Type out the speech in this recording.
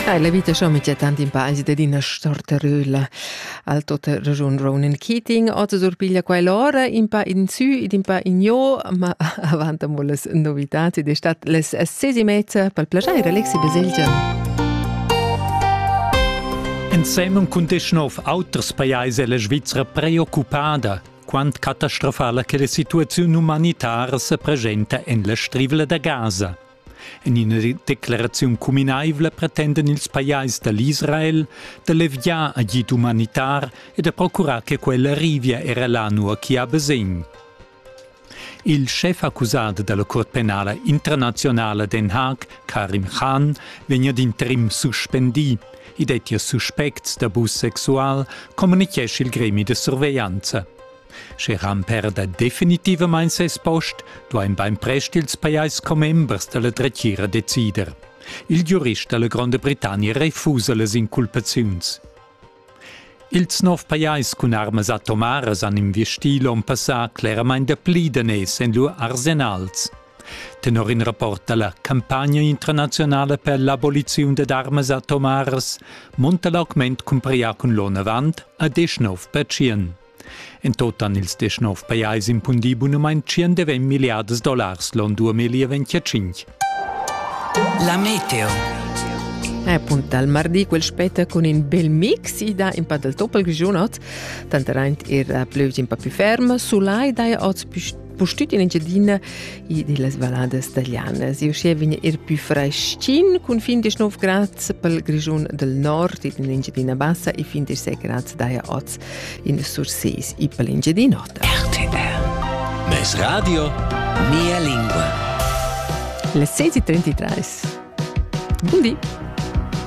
Ei la vita schon mit tant in paesi dad ina storteröla al tota ragiun Ronan Keating ota surpiglia quai l'ora in pa in sü ed in pa in jo ma avant amo las novitats ed è stat les ses e mezza pel plajair Alexi Baselgia. Ensemen cun disch nov auters pajais è la Svizzera preoccupada quant catastrofala che la situaziun umanitara se presenta en la strivla da Gaza. En ina decleraziun cuminaivla pretendan ils pajais da l'Israel da leviar agid umanitar e da procurar che quella arrivia era là nua ch'i ha basegn. Il schef accusat dalla Curt penala internazionala Den Haag, Karim Khan, vegn ad interim suspendì. I dettia suspects d'abus sexual, communitgescha il gremi da surveglianza. Sche Ramper da definitivamain ses post, duain bainprest ils pajais commembers da la dretgira decider. Il giurist da la Gronda Britannia refusa las inculpaziuns. Ils nov pajais cun armas atomaras han investì l'onn passà cleramain dapli daners en lur arsenals. Tenor in rapport da la campagna internazionala per l'aboliziun dad armas atomaras monta l'augment cumprià cun l'onn avant a 19%. En tot han ils deschnov pajais impundì bunamain 120 milliardas dollars l'on 2025. La meteo. Appunt dal mardi quel spetta cun in bel mix ida in pa dal toppel giunot, tanteraint er plevs in pa più ferm, sulai dai oz pustüt in Engiadina e dellas valladas talianas. E uschia vegn er più freschin cun fin des 9 grads pel Grischun del Nord in l'Engiadina Bassa e fin des 6 grads daja oz in Surses e pel Engiadinota. RTL Mes radio Mia lingua. Le 6:33. Buondì.